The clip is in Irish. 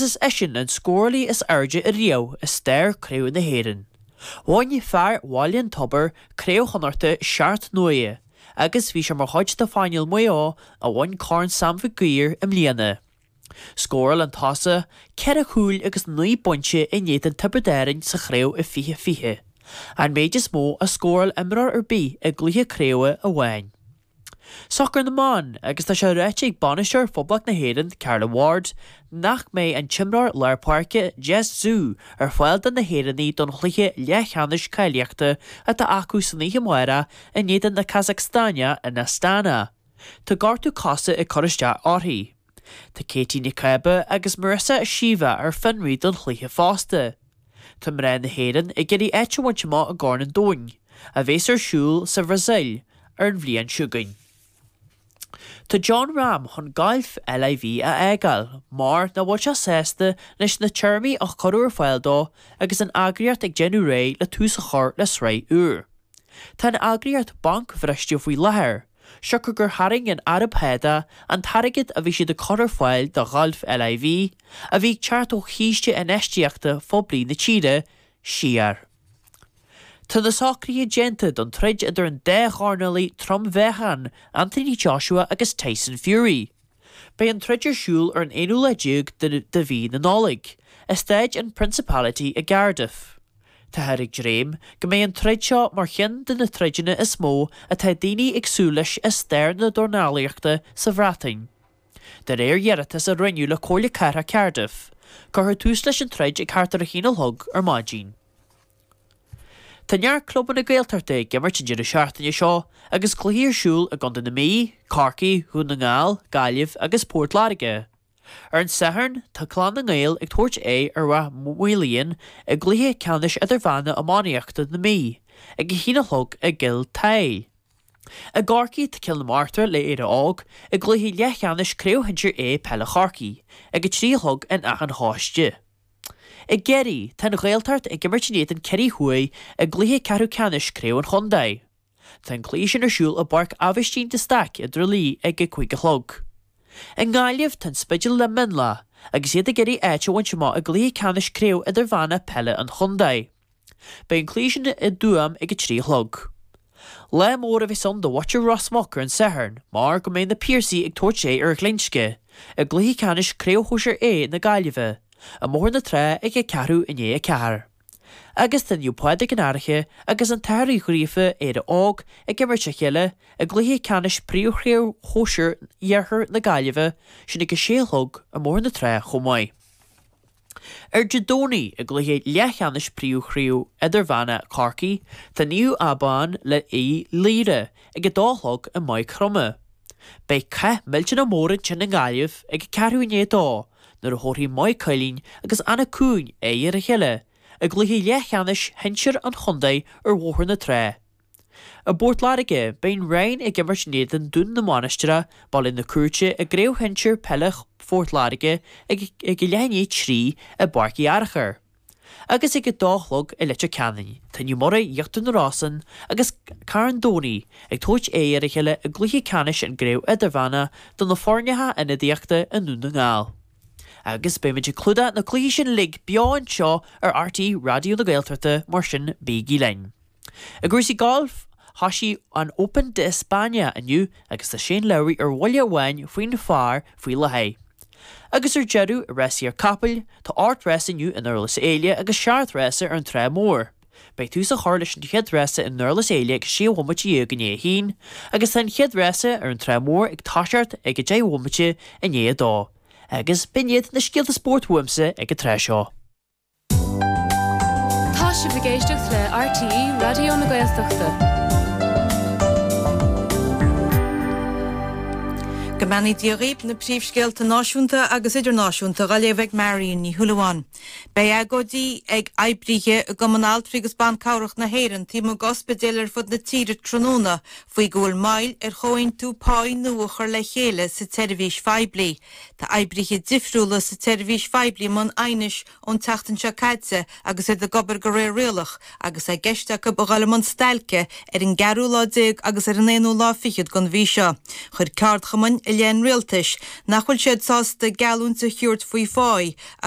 is eisean an scórálaí is airde riamh i stair Craobh na hÉireann. Bhain fear Bhaile an Tobair Craobh Chonnachta seacht n-uaire agus bhí sé mar chuid de phainéal Maigh Eo a bhain Corn Sam Mhic Uidhir i mbliana. Scóráil an tosaí ceithre chúl agus naoi bpointe in éadan Tiobraid Árainn sa chraobh i 2020, an méid is mó a scóráil imreoir ar bith i gcluiche craobhe amháin. Sacar na mBan agus tá sé ráite ag bainisteoir Phoblacht na hÉireann, Carla Ward, nach mbeidh an t-imreoir lár páirce Jess Ziu ar fáil do na hÉireannaigh don chluiche leathcheannais cáilíochta atá acu san oíche amárach in éadan na Casacstáine in Astana. Tá gortú cose ag cur isteach uirthi. Tá Katie Ní Chába agus Marissa Sheva ar fionraí don chluiche fosta. Tá mná na hÉireann ag iarraidh áit a bhaint amach i gCorn an Domhain, a bheas ar siúl sa Bhrasaíl ar an bhliain seo chugainn. Tá Jon Rahm chun gailf LIV a fhágáil mar nach bhfuil sé sásta leis na téarmaí a cuireadh ar fáil dó agus an eagraíocht ag déanamh réidh le tús a chur le sraith úr. Tá an eagraíocht bancbhriste faoi láthair. siocair gur tharraing an Araib Shádach an t-airgead a bhí siad ag cur ar fáil do Ghalf LIV, a bhí ag teacht ó chiste infheistíochta phoiblí na tíre, siar. Tá na socruithe déanta don troid idir an dá dhornálaí trom-mheáchain, Anthony Joshua agus Tyson Fury. Beidh an troid ar siúl ar an aonú lá déag de mhí na Nollag, i staid an Principality i gCardiff. Táthar ag dréim go mbeidh an troid seo mar cheann de na troideanna is mó atá daoine ag súil leis i stair na dornálaíochta sa Bhreatain. De réir iarratas a rinneadh le Comhairle Cathrach Cardiff, cuirfear tús leis an troid ag thart ar a haon a chlog ar maidin. Tá neart clubanna Gaeltachta ag imirt an deireadh seachtaine seo agus cluichí ar siúl i gContae na Mí, Corcaigh, Dhún na nGall, Gaillimh agus Port Láirge. Ar an Satharn, tá Clann na nGael ag tabhairt aghaidh ar Rath Maoilíon i gcluiche ceannais idirmheánna iománaíochta na Mí ag a haon a chlog i gCill Tadhaill. I gCorcaigh, tá Cill na Martra le Éire Óg i gcluiche leathcheannais Craobh Shinsir A Peile Chorcaí ag a trí a chlog in Achadh an Chóiste. I gCiarraí, tá an Ghaeltacht ag imirt in éadan Ciarraí Thuaidh i gcluiche ceathrú ceannais craobh an chontae. Tá an cluiche sin ar siúl i bPáirc Aibhistín de Staic i dTrá Lí ag a 5 a chlog. I nGaillimh, tá an Spidéal le Mionlach agus iad ag iarraidh áit a bhaint amach i gcluiche ceannais craobh idirmheánach peile an chontae. Beidh an cluiche sin i dTuaim ag a trí a chlog. Lá mór a bheas ann do bhuaiteoir Ros Muc ar an Satharn mar go mbeidh Na Piarsaigh ag tabhairt aghaidh ar Ghlinsce i gcluiche ceannais Craobh Shóisir A na Gaillimhe i mBóthar na Trá ag a ceathrú i ndiaidh a ceathair. Agus tá Naomh Pádraig an Fhairche agus An tAthair Uí Ghríofa Éire Óg, ag imirt a chéile i gcluiche ceannais Príomhchraobh Shóisir Iarthar na Gaillimhe sin ag a sé a chlog i mBóthar na Trá chomh maith. Ar an Domhnach i gcluiche leathcheannais Príomhchraobh Idirmheána Chorcaí tá Naomh Abán le Uíbh Laoire ag a dó a chlog i Maigh Chromtha. Beidh cath millteanach mór ansin i nGaillimh ag a ceathrú i ndiaidh a dó nuair a thabharfaidh Maigh Cuilinn agus Anach Cuain aghaidh ar a chéile i gcluiche leathcheannais shinsir an chontae ar Bhóthar na Trá. I bPort Láirge, beidh an Rinn ag imirt in éadan Dún na Mainistire, Baile na Cúirte, i gCraobh Shinsir Peile Phort Láirge ag a leath i ndiaidh a trí i bPáirc Uí Fhearachair, agus ag a dó a chlog i Leitir Ceanainn. Tá Naomh Muraí, Íochtar na Rosann, agus Carn Domhnaigh ag tabhairt aghaidh ar a chéile i gcluiche ceannais i gCraobh Idirmheánach do na foirne ionadaíochta i nDún na nGall, agus beimid ag clúdach na gcluichí sin uilig beo anseo ar RTÉ Raidió na Gaeltachta, mar sin bígí linn. I gcúrsaí gailf, thosaigh an Open d'Espanya inniu agus tá Shane Lowry ar bhuille amháin faoin phar faoi láthair. Agus ar deireadh, i rásaí na gcapall, tá ocht rása inniu i nDurlas Éile agus seacht rása ar an Trá Mór. Beidh tús á chur leis an chéad rása i nDurlas Éile ag a sé bhomaite dhéag i ndiaidh a haon agus tá an chéad rása ar an Trá Mór ag toiseacht ag a deich bhomaite i ndiaidh a dó. Agus b'in iad na scéalta spóirt uaimsa ag an tráth seo. Tá sibh ag éisteacht le RTÉ Raidió na Gaeltachta. Go mbeannaí Dia dhaoibh na príomhscéalta náisiúnta agus idirnáisiúnta dhá léamh ag Marion Ní Shúilleabháin. Beidh agóidí ag oibrithe i gCumann Altraí agus Ban Cabhrach na hÉireann taobh amuigh d'ospidéil ar fud na tíre tráthnóna faoi go bhfuil moill ar chomhaontú páí nua a chur le chéile sa tseirbhís phoiblí. Tá oibrithe difriúla sa tseirbhís phoiblí i mbun aighnis ón tseachtain seo caite agus iad ag obair de réir rialach agus é i gceist acu a dhul i mbun stailce ar an gceathrú lá déag agus ar an aonú lá fichead den mhí seo. Chuir ceardchumainn i leith an rialtais nach bhfuil siad sásta geallúint a thabhairt faoi phá agus